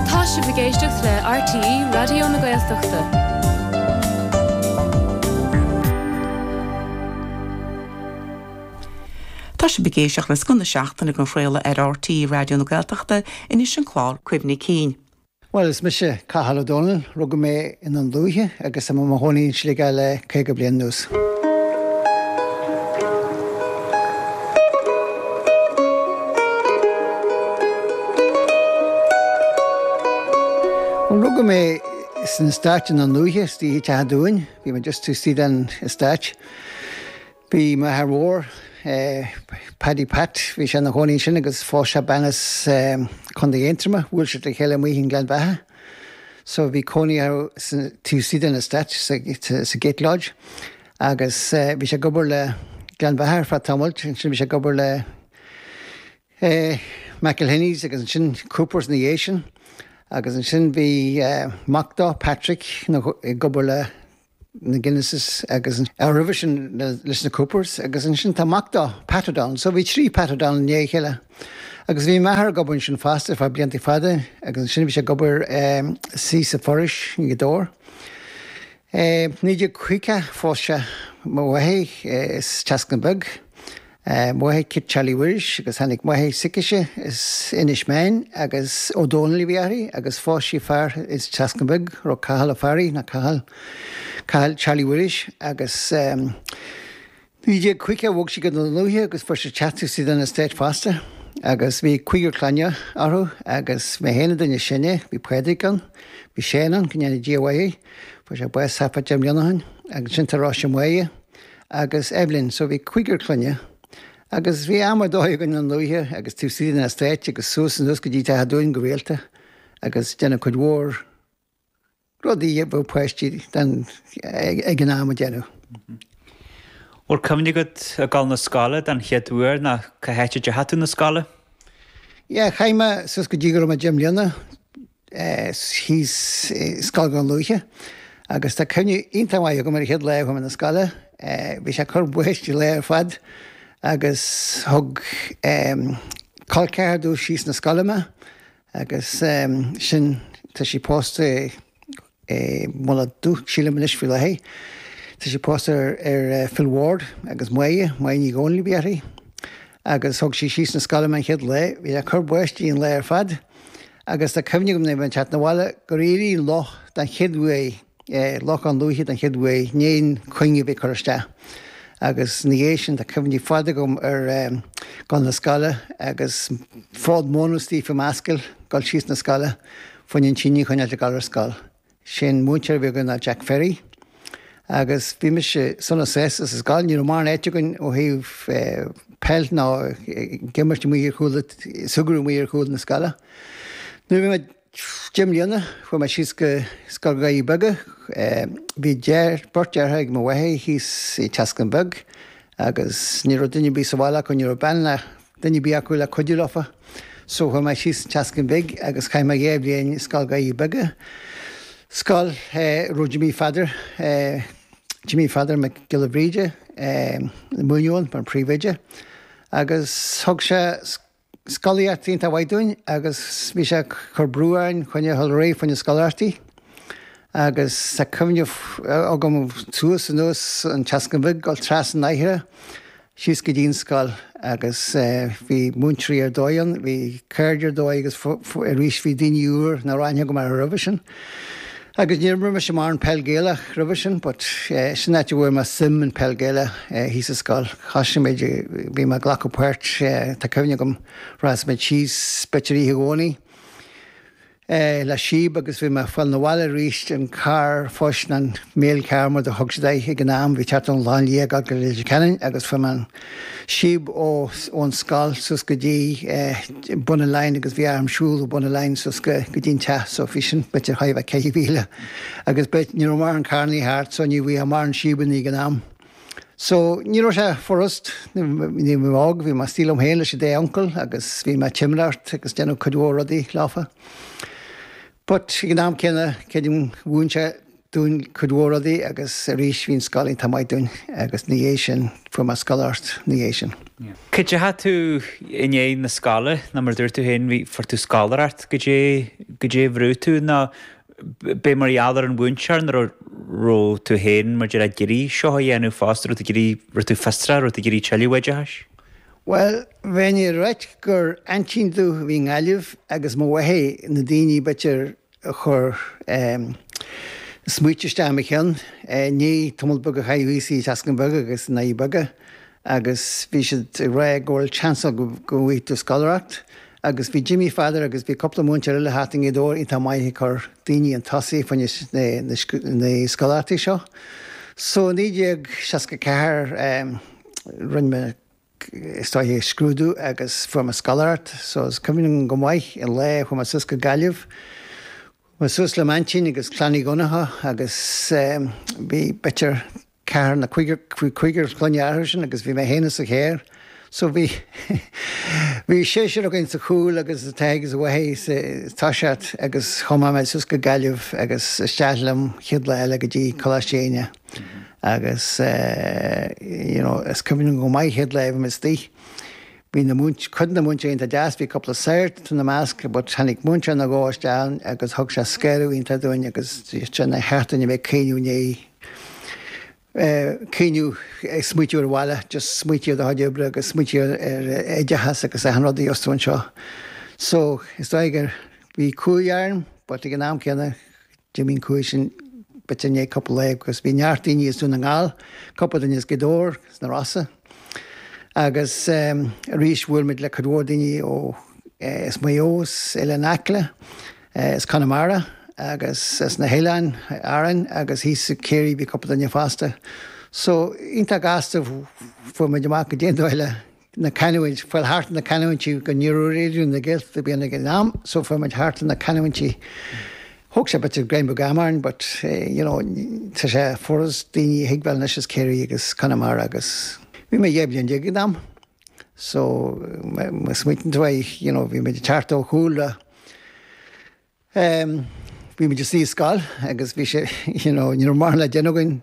Tá sibh ag éisteacht le RTÉ Raidió na Gaeltachta. Tá sibh ag éisteacht le scoth na seachtaine á chraoladh ar RTÉ Raidió na Gaeltachta, anois an clár Cuimhní Cinn. Bhuel, is mise Cathal Ó Dónaill. Rugadh mé. i nDún Lúiche agus tá mé i mo chónaí i Sligeach le 50 bliain anuas. Rugadh mé san estate i nDún Lúiche, Teach an Dúin, bhí mé just taobh istigh den estate. Bhí m'athair mór, Paddy Pat, bhí sé ina chónaí ansin agus phós sé bean as Contae Aontroma, bhuail siad le chéile amuigh i nGleann Bheatha so bhí cónaí orthusan taobh istigh den estate, sa gate lodge agus bhí sé ag obair le Gleann Bheatha ar feadh tamaill, ansin bhí sé ag obair le McIlhenny's agus ansin Coopers ina dhiaidh sin agus ansin bhí mac dó, Patrick, ag obair le na Guinnesses agus roimhe sin leis na Coopers agus ansin tá mac dó, Pat O'Donnell, so bhí trí Pat O'Donnell i ndiaidh a chéile. Agus bhí m'athair ag obair ansin fosta ar feadh blianta fada agus ansin bhí sé ag obair thíos sa foraois i nGaoth Dobhair. I 1950 phós sé mo mháthair as an tSeascann Bheag A Mary Kit Charlie Mhuiris agus tháinig máthair s'aicise as Inis Meáin agus Ó Dónaill a bhí uirthi agus phós sí fear ins an tSeascann Bheag a raibh Cathal a fear í ná Cathal Cathal Charlie Mhuiris agus i 1950 bhog sí go Dún Lúiche agus fuair sé teach taobh istigh den estate fosta agus bhí cúigear clainne orthu agus mé féin an duine is sine bhí Pádraig ann bhí Seán ann go ndéana Dia a mhaith air fuair sé bás thart fá deich mbliana ó shin agus ansin tá Rosemary agus Evelyn, so bhí cúigear clainne agus bhí am ar dóigh againn i nDún Lúiche agus taobh istigh den estate agus suas anuas go dtí Teach an Dúin go rialta agus ag déanamh cuid mhór rudaí a bheadh páistí den ag an am a dhéanamh. Bhfuil cuimhne agat ag gabháil na scoile den chéad uair ná cá háit a deachaigh tú na scoile? Yeah, chaith mé suas go dtí go raibh mé deich mbliana, thíos scoil Dhún Lúiche agus tá cuimhne iontach maith agam ar an chéad lá a chuaigh mé na scoile. Bhí sé ag cur báistí an lá ar fad agus thug col ceathar domh síos na scoile mé agus sin tá sí pósta é. Mullach Dubh, sílim, anois faoi láthair. Tá sí pósta ar Phil Ward agus Moya, Moya Ní Dhomhnaill a bhí uirthi, agus thug sí síos na scoile mé an chéad lá. Bhí sé ag cur báistí an lá ar fad agus tá cuimhne agam nuair a bhí mé ag teacht na bhaile gur éirigh loch den chéad uair, lochán luaithe den chéad uair, in aon chuing a bhí ag cur isteach. Agus ina dhiaidh sin tá cuimhní fada agam ar dhul na scoile agus fód móna istigh faoim ascaill, dhul síos na scoile. Fá choinne an tine a choinneáilt ag dul ar scoil. Is é an múinteoir a bhí againn ná Jack Ferry agus bhí mise sona sásta sa scoil. Ní raibh mórán áite againn ó thaobh peil ná ag imirt amuigh ar chúl, ag súgradh amuigh ar chúl na scoile. Nuair a bhí mé deich mbliana chuaigh mé síos go Scoil Dhoirí Beaga. Bhí beirt deartháir ag mo mháthair thíos sa tSeascann Beag agus ní raibh duine ar bith sa bhaile acu, ní raibh bean le duine ar bith acu le cuidiú leofa. So chuaigh mé síos an tSeascainn Bhig agus chaith mé dhá bhliain i Scoil Dhoirí Beaga, scoil a raibh Jimí Pheadair, Jimí Pheadair Mac Giolla Bhríde, ag múineadh ann mar phríomhoide agus thug sé scolaíocht iontach mhaith dúinn agus bhí sé ag cur brú orainn fá choinne a dhul réidh fá choinne scoláireachtaí agus tá cuimhne agam suas anuas an tSeascainn Bhig dul trasna an mhachaire síos go dtí an scoil agus bhí múinteoirí ar dóigh ann, bhí cairde ar dóigh agus arís bhí daoine úr nach raibh aithne agam orthu roimhe sin. Agus ní raibh mise mórán Peil Gaelach roimhe sin but sin áit a bhfuair mé suim in Peil Gaelach, thíos sa scoil. Thoisigh muid, bhí mé ag glacadh páirt, tá cuimhne agam, rachadh muid síos, b'fhéidir Oíche Dhomhnaigh, é le síob agus bhí mé ag fáil na bhaile aríst in carr an phosta nó an Mail Car mar a thug siad air ag an am, bhí ag teacht ón Chlochán Liath ag dul go Leitir Ceanainn agus fuair mé an síob ó ón scoil suas go dtí bun an line agus bhí orm siúl ó bun an line suas go go dtí an teach so bhí sin b'fhéidir thart fá ceithre mhíle agus but ní raibh mórán carrannaí thart so ní bhíodh mórán síobannaí ag an am. So, ní raibh sé furast, nuair a bhí mé óg, bhí mé istigh liom féin leis an dá uncail agus bhí mé ag timireacht agus déanamh cuid mhór rudaí leofa. But, ag an am céanna, creidim mhúin sé dúinn cuid mhór rudaí agus arís bhí an scoil iontach maith dúinn agus ina dhiaidh sin fuair mé scoláireacht ina dhiaidh sin. Cá dteachaidh tú i ndiaidh na scoile nó mar a dúirt tú féin bhí fuair tú scoláireacht caidé caidé a bhrúigh tú nó Ab é mar gheall ar an mhúinteoir nó an raibh tú féin mar a déarfá ag iarraidh seo a dhéanamh fosta, raibh tú ag iarraidh, raibh tú fiosrach, raibh tú ag iarraidh tuilleadh oideachais? Bhuel, bheinn ag rá gur aintín domh a bhí i nGaillimh agus mo mháthair na daoine b'fhéidir a chuir em smaoite isteach i mo cheann, eh an tamall beag a chaith mé thíos sa tSeascann Beag agus i nDoirí Beaga agus bhí siad ag rá go bhfuil seans agat go bhfaighidh tú scoláireacht, Agus bhí Jimmy Pheadair agus bhí cúpla múinteoir eile thart i nGaoth Dobhair iontach maith ag cur daoine chun tosaigh fá choinne na scoláireachtaí seo. So i 1964 rinne mé is dóigh scrúdú agus fuair mé scoláireacht. So is cuimhin liom go maith an lá a chuaigh mé suas go Gaillimh. Chuaigh mé suas le m'aintín agus Clann Uí Dhonnacha agus bhí b'fhéidir, ceathrar nó cúigear clainne an uair sin agus bhí mé fhéin insa charr so bhí bhí seisear againn sa chúl agus an t-athair is an mháthair insa toiseacht agus chuaigh mé suas go Gaillimh agus isteach liom an chéad lá eile go dtí Coláiste Éinne agus you know is cuimhin go maith chéad lá a bhí mé istigh bhí cuid de na múinteoirí iontach deas bhí cúpla sagart ina measc but tháinig múinteoir nó dhó isteach ann agus thug sé scaoileadh iontach dúinn agus sin nár cheart dúinn a bheith ag caoineadh i ndiaidh caoineadh, ag smaoitiú ar an bhaile, just smaoití ar do chuid oibre agus smaoití ar oideachas agus achan rud a gheobhas tú anseo. So, is dóigh gur, bhí cumhaidh orm but ag an am céanna, d'imigh an cumhaidh sin b'fhéidir i ndiaidh cupla lá agus bhí neart daoine as Dún na nGall, cupla duine as Gaoth Dobhair, as na Rosa agus arís bhuail muid le cuid mhór daoine ó, as Maigh Eo, as Oileán Acla. As Conamara agus as na hOileáin Árann agus thíos i gCiarraí bhí cúpla duine fosta. So, iontach gasta fuair muid amach goidé an dóigh le na canúint, fáil thart na canúintí cos ní raibh Raidió na Gaeltachta ar bith ann ag an am, so fuair muid thart na canúintí. Thóg sé b'fhéidir go raibh magadh orainn but, you know, tá sé furast daoine a thuigbheáil anois as Ciarraí agus Conamara agus bhí mé dhá bhliain déag ag an am. so má smaoitíonn tú air, you know, bhí muid ag teacht ó shúile, ehm, bhí muid istigh i scoil agus bhí sé, you know, ní raibh mórán le déanamh againn,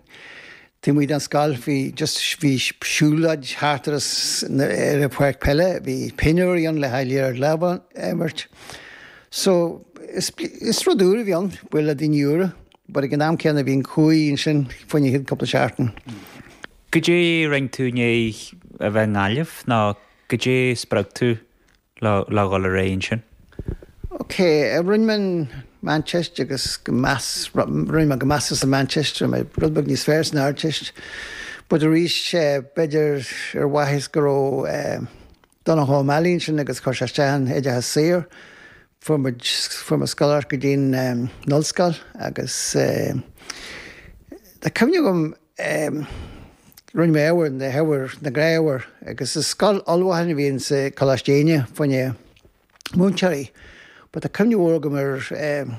taobh amuigh den scoil, bhí just, bhí siúlóid thart ar ar an pháirc peile, bhí pinniúr ann le haghaidh liathróid láimhe a imirt, so is is rud úr a bhí ann, bualadh le daoine úra, but ag an am céanna bhí an cumhaidh ansin fá choinne cúpla seachtain. Goidé rinne tú i ndiaidh a bheith i nGaillimh nó goidé spreag tú le dhul ar aghaidh ansin? OK, rinne mé an Mheánteist agus go meas, rinne mé go measartha sa Mheánteist, rinne mé rud beag níos fearr san Ardteist but arís b'fhéidir ar mhaitheas go raibh Donncha O'Malley ansin agus chuir sé isteach an oideachas saor, fuair muid, fuair mé scoláireacht go dtí an Ollscoil agus tá cuimhne agam, em. Rinne mé ábhair na hábhair na gnáthábhair agus is scoil ullmhacháin a bhí in sa Coláiste Éinne fá choinne múinteoirí but tá cuimhne mhór agam ar em.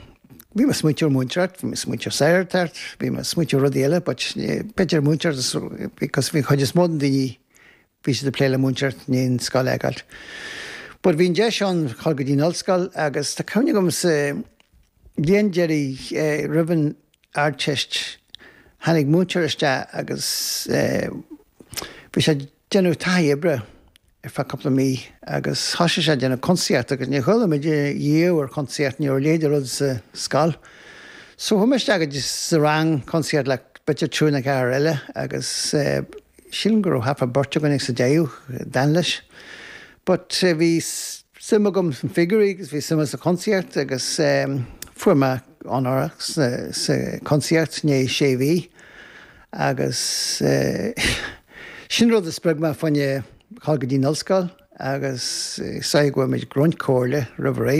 Bhí mé ag smaointiú ar mhúinteoireacht, bhí mé ag smaointiú ar shagartacht, bhí mé ag smaointiú ar rudaí eile but b'fhéidir múinteoireacht because bhí an chuid is mó de na daoine Bhí siad ag plé le múinteoir i scoil ag Alt. But bhí an deis ann dhul go dtí an ollscoil agus tá cuimhne agam sa bhliain deiridh roimh an Ardteist tháinig múinteoir isteach agus bhí sé ag déanamh taithí oibre ar feadh cúpla mí agus thosaigh sé ag déanamh cuntasaíocht agus níor chuala muid riamh ar chuntasaíocht, ní raibh a leithéid de rud sa scoil. So chuaigh mé isteach go dtí sa rang cuntasaíocht le b'fhéidir triúr nó ceathrar eile agus Sílim go raibh thart fá beirt againn sa deireadh a d'fhan leis but bhí suim agam sna figiúirí agus bhí suim agam sa chuntasaíocht agus fuair mé onóracha sa chuntasaíocht i ndéidh sé mhí agus sin rud a spreag mé fá choinne dhul go dtí an ollscoil agus is dóiche go bhfuair muid roinnt comhairle roimh ré.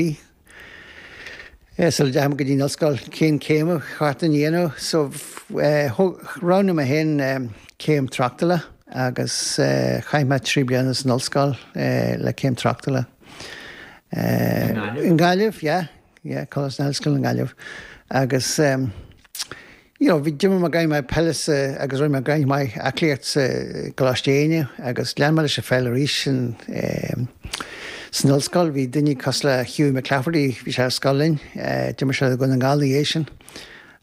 Sula dteachaidh mé go dtí an ollscoil, cén céim ba cheart dom a dhéanamh? So roghnaigh mé féin céim tráchtála agus chaith mé trí bliana san ollscoil le céim tráchtála. I nGaillimh? I nGaillimh, yeah. Yeah, Coláiste na hOllscoile i nGaillimh. Agus You know, bhí, d'imir mé gráinnín maith peile sa, agus rinne mé gráinnín maith aclaíocht sa gColáiste Éinde agus lean mé leis an pheil arís san, eh, san ollscoil. Bhí daoine cosúil le Hughie McClafferty, bhí sé ar scoil linn, eh, d'imir sé do Dhún na nGall ina dhiaidh sin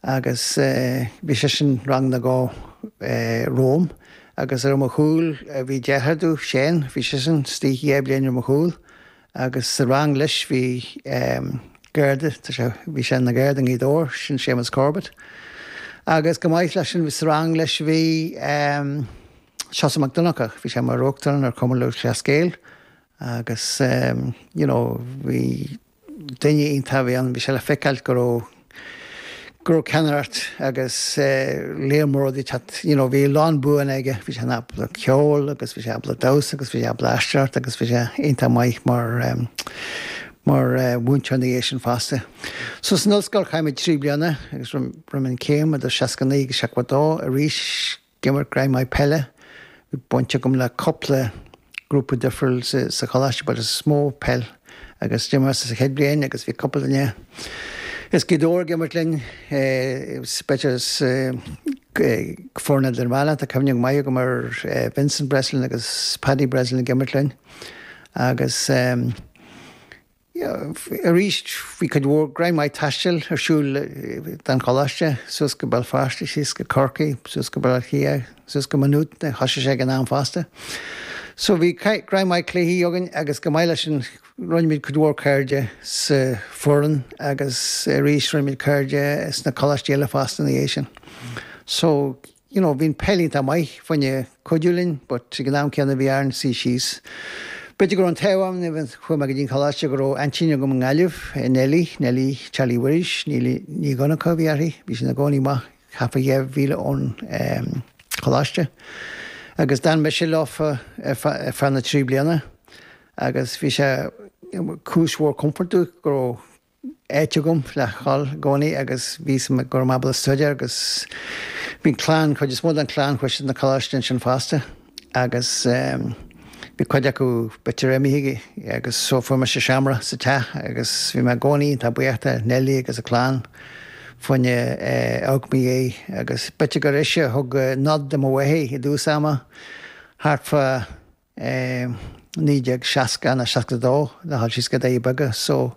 agus, eh, bhí seisean rang nó dhó, eh, romham agus ar mo chúl, eh, bhí deartháir domh, Seán, bhí seisean is dóiche dhá bhliain ar mo chúl Agus sa rang leis bhí Garda, tá sé, bhí sé ina Gharda i nGaoth Dobhair, sin Séamus Corbett. Agus chomh maith leis sin sa rang leis bhí Seosamh Mac Donncha, bhí sé mar Uachtarán ar Chumann Lúthchleas Gael agus you know bhí duine iontach a bhí ann, bhí sé le feiceáil go raibh, go raibh ceannaireacht agus lear mór rudaí thart you know bhí a lán buanna aige, bhí sé ábalta ceol agus bhí sé ábalta damhsa agus bhí sé ábalta aisteoireacht agus bhí sé iontach maith mar ehm mar mhúinteoir ina dhiaidh sin fosta. So san ollscoil chaith mé trí bliana agus rinne mé an céim idir 69 agus 72 arís, D'imir gráinnín maith peile. Bhí baint agam le cúpla grúpa difriúil sa choláiste but is mó peil agus d'imir mé sa chéad bhliain agus bhí cúpla duine as Gaoth Dobhair ag imirt linn, speisialta sa foireann idirmheánach. Tá cuimhne maith agam ar Vincent Breslin agus Paddy Breslin ag imirt linn agus. Arís, bhí cuid mhór gráinnín maith taistil ar siúl ag an Choláiste, suas go Béal Feirste, síos go Corcaigh, suas go Baile Átha Cliath, suas go Má Nuad, thosaigh sé ag an am fosta. So bhí gráinnín maith cluichí againn agus chomh maith leis sin, rinne muid cuid mhór cairde sa foireann agus arís rinne muid cairde sna coláistí eile fosta ina dhiaidh sin. So. you know bhí an peil iontach maith faoina cuidiú linn but ag an am céanna bhí orainn suí síos b'fhéidir go raibh an t-ádh orm even chuaigh mé go dtí an coláiste go raibh aintín agam i nGaillimh Nellie Nellie Charlie Mhuiris Neilí Ní Dhonnacha a bhí uirthi bhí sí ina cónaí amach thart fá dhá mhíle ón choláiste agus d'fhan mise leofa ar feadh na trí bliana agus bhí sé cúis mhór comfort go raibh áit agam le ghabháil i gcónaí agus bhí a fhios go raibh mé ábalta staidéar agus bhí an clann, chuid is mó den chlann chuaigh siad na coláiste ansin fosta agus bhí cuid acu b'fhéidir imithe agus so fuair mise seomra sa teach agus bhí mé i gcónaí iontach buíoch de Neilí agus a clann faoina a aug mé í agus b'fhéidir gur ise a thug nod do mo mháthair i dtús ama thart fá 1960 ná 62 le ghabháil síos go Doirí Beaga so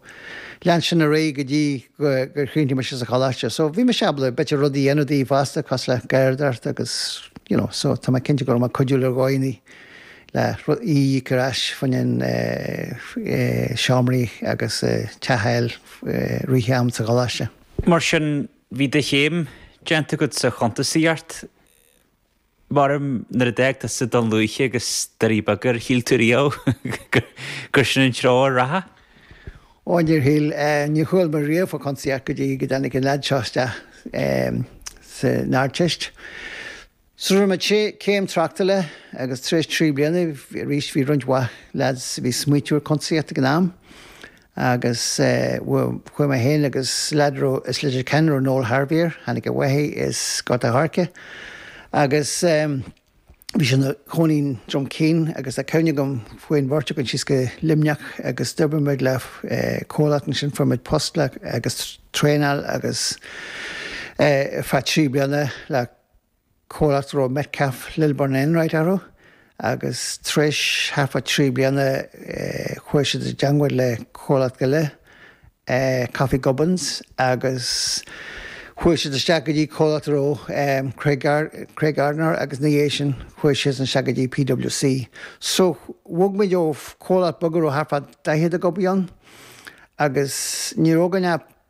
lean sin ar aghaidh go dtí gur chríochnaigh mise sa choláiste so bhí mise ábalta b'fhéidir rudaí a dhéanamh dí fosta cosúil le garraíodóireacht agus you know so tá mé cinnte go raibh mé cuidiúil ar dhóigheannaí le í a íoc ar ais faoin an seomraí agus teach a fháil i rith an am sa choláiste. Mar sin bhí do chéim déanta agat sa chuntasaíocht. Mairim nuair a d'fhág tusa Dún Lúiche agus Doirí Beaga, ar shíl tú riamh gur sin an treo a rachfá. Ó, níor shíl. Níor chuala mé riamh fá chuntasaíocht go dtí go dtáinig an leaid seo isteach san Ardteist. So rinne mé céim tráchtála agus tar éis trí bliana arís bhí roinnt mhaith leaids a bhí ag smaoitiú ar chuntasaíocht ag an am Agus chuaigh mé féin agus leaid a raibh as Leitir Ceanainn a raibh Noel Harvey air, tháinig a mháthair as Gort an Choirce agus bhí sé ina chónaí i nDroim Caoin agus tá cuimhne agam chuaigh an bheirt againn síos go Luimneach agus d'oibrigh muid le comhlacht ansin, fuair muid post le agus traenáil agus ar feadh trí bliana le. comhlacht a raibh Metcalfe Lilburn Enright orthu agus tar éis thart fá trí bliana chuaigh siad i dteangmháil le comhlacht eile Coffey Gubbins agus chuaigh siad isteach go dtí comhlacht a raibh Craig Craig Gardner agus ina dhiaidh sin chuaigh siad isteach go dtí PWC. So bhog muid ó comhlacht beag a raibh thart fá 40 ag obair ann agus ní raibh againn ach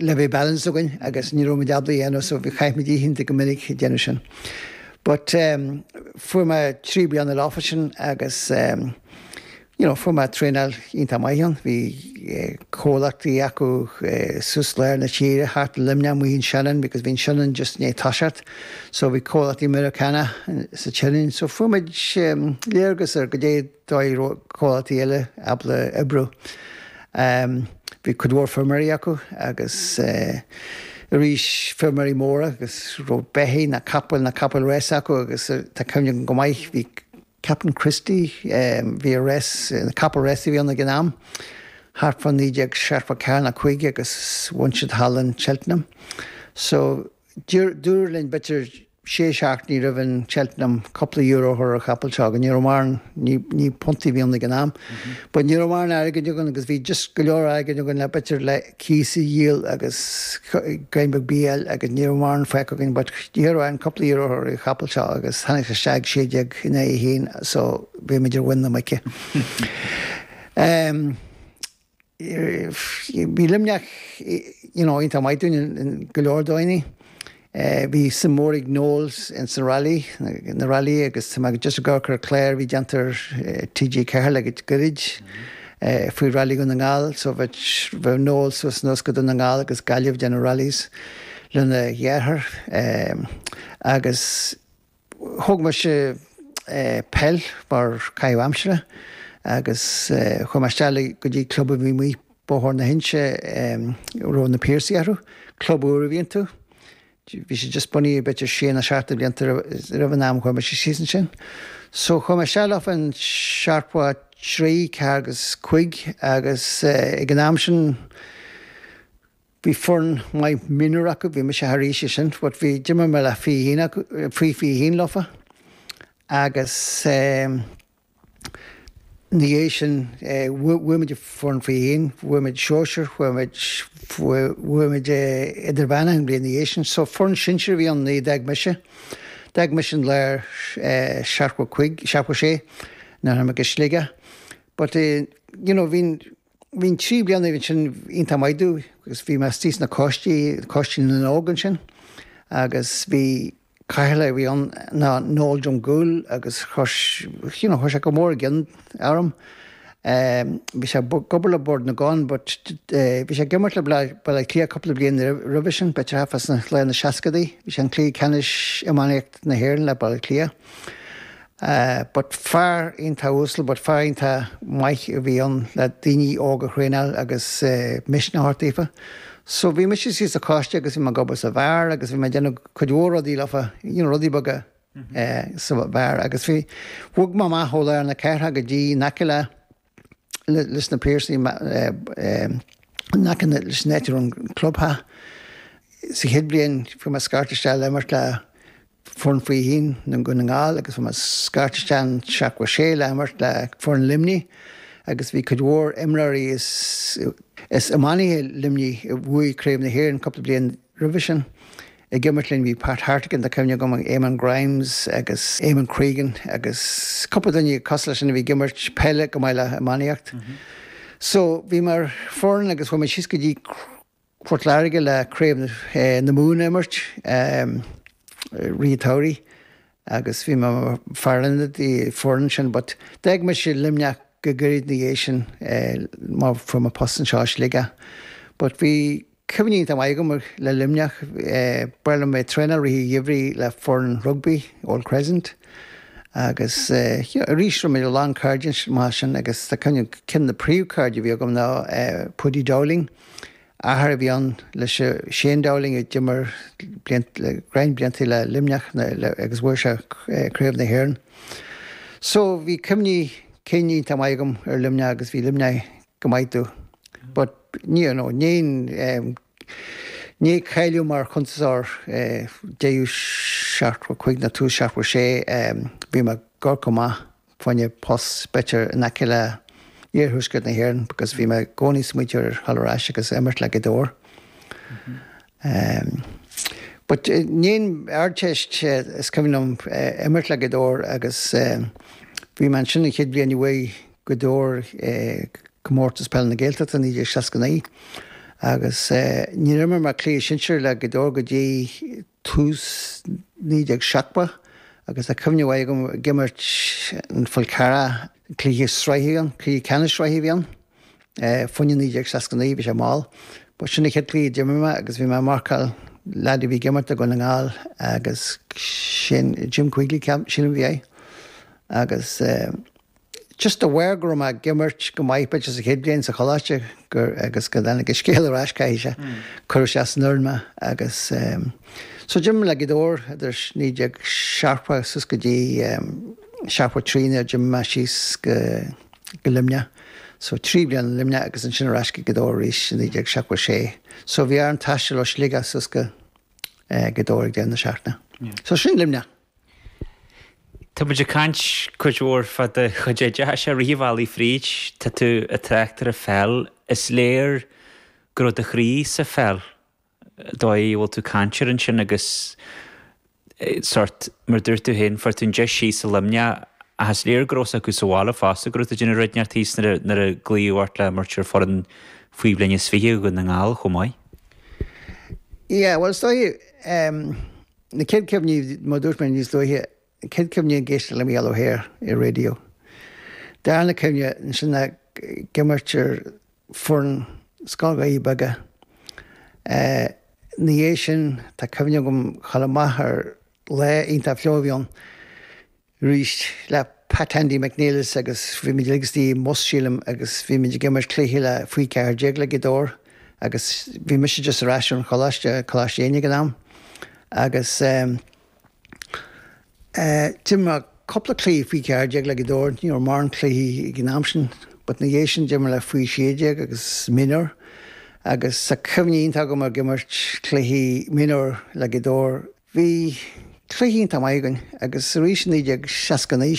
le bheith balance againn agus ní raibh muid ábalta é a dhéanamh so chaith muid oícheanta go minic ag déanamh sin. But fuair mé trí bliana leofa sin agus you know fuair mé traenáil iontach maith ann. Bhí comhlachtaí acu suas lár na tíre thart Luimneach amuigh in Shannon because bhí an Shannon just i ndiaidh toiseacht so bhí comhlachtaí Meiriceánach sa tShannon so fuair muid léargas ar goidé Dóigh comhlachtaí eile ábalta oibriú. Bhí cuid mhór feirmeoirí acu agus arís feirmeoirí móra a raibh beithígh nó capaill nó capaill rása acu agus tá cuimhne agam go maith bhí Captain Christy bhí rás capall rása a bhí ann ag an am thart fá naoi déag seachtó ceathair nó cúig agus bhain siad thall in Cheltenham so Dúradh linn b'fhéidir sé seachtainí roimh an Cheltenham cúpla euro a chur ar an chapall seo, agus ní raibh mórán ní puntaí a bhí ann ag an am, but ní raibh mórán airgid againn agus bhí just go leor airgid againn le b'fhéidir le cíos a dhíol agus greim beag bídh a fháil agus ní raibh mórán fágtha againn but d'iarr orainn cúpla euro a chur ar an chapall seo agus tháinig sé isteach ag sé déag in aghaidh a haon so bhí muid ar mhuin na muice. Bhí Luimneach iontach maith dúinn in go leor dóigheanna. Bhí suim mhór ag Noel insan rally, na railí agus tá mé just ag amharc ar an chlár a bhí déanta ar TG4 le goirid faoi Rally Dhún na nGall so bheadh Noel suas anuas go Dún na nGall agus Gaillimh déanamh rallies lena dheartháir agus Thóg mise peil mar caitheamh aimsire agus chuaigh mé isteach go dtí club a bhí amuigh i mBóthar na hInse, a raibh na Piarsaigh orthu, club úr a bhí iontu. Bhí sé just bunaithe b'fhéidir ar sé nó seacht de bhlianta roimh an am a chuaigh mise síos ansin. So chuaigh mé isteach leofa in seachtó a trí, ceathair agus cúig agus ag an am sin, Bhí foireann maith mionúr acu, bhí mise thar aois sin but bhí, d'imir mé le fiche haon acu, faoi fiche haon leofa agus eh ina dhiaidh sin eh bhuaigh muid foireann faoi fiche haon, bhuaigh muid sóisir, bhuaigh muid, bhuaigh muid eh idirmheánach an bhliain ina dhiaidh sin so foireann sinsir a bhí ann nuair a d'fhág mise, d'fhág mise i lár eh seachtó cúig, seachtó sé nuair a tháinig mé go Sligeach but eh you know bhínn, Bhí na trí bliana sin iontach maith dúinn agus bhí mé istigh sna coistí, Coistí na nÓg ansin agus bhí Cathaoirleach a bhí ann ná Noel Drumgoole agus you know chuaigh sé go mór i gcion orm. Bhí sé ag obair le Bord na gCon but bhí sé ag imirt le Baile Átha Cliath cúpla bliain roimhe sin, b'fhéidir thart fá lár na seascaidí, bhí sé an cluiche ceannais iománaíocht na hÉireann le Baile Átha Cliath. Eh, but fear iontach uasal, but fear iontach maith a bhí ann le daoine óga a thraenáil agus eh, misneach a thabhairt daofa. So bhí mise síos sa choiste agus bhí mé ag obair sa bheár agus bhí mé ag déanamh cuid mhór rudaí leofa, you know, rudaí beaga eh, sa bheár agus bhí, bhog mé amach ó lár na cathrach go dtí in aice le, leis na Piarsaigh in aice leis an áit a raibh an clubtheach. Sa chéad bhliain fuair mé scairt isteach le imirt le foireann faoi fiche haon Dhún na nGall agus fuair mé scairt isteach in seachtó a sé le himirt le foireann Luimnigh agus bhí cuid mhór imreoirí is iománaithe Luimnigh a bhuaigh Craobh na hÉireann cúpla bliain Roimhe sin, ag imirt linn, bhí Pat Hartigan, tá cuimhne agam, Éamonn Grimes agus Éamonn Cregan agus cúpla duine cosúil leis sin a bhí ag imirt peile chomh maith le iománaíocht. So, bhí mé ar an fhoireann agus chuaigh muid síos go dtí Port Láirge le craobh na Mumhan a imirt, Ríthe Taidhrí agus bhí mé i mo fear ionaid don fhoireann sin but d'fhág mise Luimneach go gairid ina dhiaidh sin mar fuair mé post anseo i Sligeach but bhí Cuimhní iontach maith agam le Luimneach, ba ghnách liom bheith ag traenáil i rith an gheimhridh le foireann rugbaí, Old Crescent, agus arís rinne mé a lán cairde maith ansin agus tá cuimhne agam ceann de na príomhchairde a bhí agam ná Paudie Dowling, athair a bhí ann le Shane Dowling a d'imir le roinnt blianta le Luimneach agus bhuaigh sé Craobh na hÉireann. So bhí cuimhní cinn iontach maith agam ar Luimneach agus bhí Luimneach go maith domh but ní you know níor níor cháiligh mé mar chuntasóir go dtí seachtó a cúig nó tús seachtó a sé bhí mé gur go maith bhfaighinn post b'fhéidir in aice le iarthuaisceart na hÉireann because bhí mé i gcónaí ag smaointiú ar ghabháil ar ais agus imirt le Gaoth Dobhair but i ndiaidh an Ardteist is cuimhin liom imirt le Gaoth Dobhair agus bhí mé ansin an chéad bhliain a bhuaigh Gaoth Dobhair Comórtas Peile na Gaeltachta 1969 agus níor imir mé cluiche sinsear le Gaoth Dobhair go dtí tús 1970 agus tá cuimhne mhaith agam ag imirt ar an Fhál Carrach, cluiche sraithe a bhí ann, cluiche ceannais sraithe a bhí ann, fá choinne 1969, bhí sé mall. Ba sin an chéad chluiche a d'imir mé agus bhí mé ag marcáil leaid a bhí ag imirt ag Dún na nGall agus sin Jim Quigley, ceap, sílim a bhí air agus. Just de bharr go raibh mé ag imirt go maith b'fhéidir sa chéad bhliain sa choláiste gur agus go dtáinig an scéal ar ais caithfidh sé cuireadh isteach san fhoireann mé agus so d'imir mé le Gaoth Dobhair idir 1970 suas go dtí 73 nuair d'imigh mé síos go go Luimneach so trí bliana in Luimneach agus ansin ar ais go Gaoth Dobhair arís i 1976 so bhí orm taisteal ó Shligeach suas go Gaoth Dobhair ag deireadh na seachtaine. So sin Luimneach. Tá muid ag caint cuid mhór fá do chuid oideachais i rith an bhealaigh fríd. Tá tú ag trácht ar an pheil. Is léir go raibh do chroí sa pheil, dóigh a bhfuil tú ag caint air ansin agus sórt, mar a dúirt tú féin, fuair tú an deis síos i Luimneach ach is léir go raibh fhios acu sa bhaile fosta go raibh tú ag déanamh rud inteacht thíos nuair a glaodh ort le imirt ar foireann faoi bhliain is fiche Dhún na nGall chomh maith. Yeah, bhuel is dóigh, Na chéad chuimhní, mar a dúirt mé níos luaithe, an chéad chuimhne ag éisteacht le Mícheál Ó hEithir ar raidió. Darna cuimhne, ansin ag imirt ar foireann Scoil Dhoirí Beaga. Ina dhiaidh sin, tá cuimhne agam chomh maith ar lá iontach fliuch a bhí ann. arís le Pat 'Andy' McNelis agus bhí muid uilig istigh i mbus, sílim, agus bhí muid ag imirt cluichí le faoi 14 le Gaoth Dobhair agus bhí mise just ar ais ón choláiste, Coláiste Éinne ag an am, agus eh d'imir mé cúpla cluichí faoi 14 le Gaoth Dobhair, ní raibh mórán cluichí ag an am sin but ina dhiaidh sin d'imir mé le faoi 16 agus mionúir agus tá cuimhní iontach agam ag imirt cluichí mionúir le Gaoth Dobhair, Bhí cluichí iontach maith againn agus arís i 1969,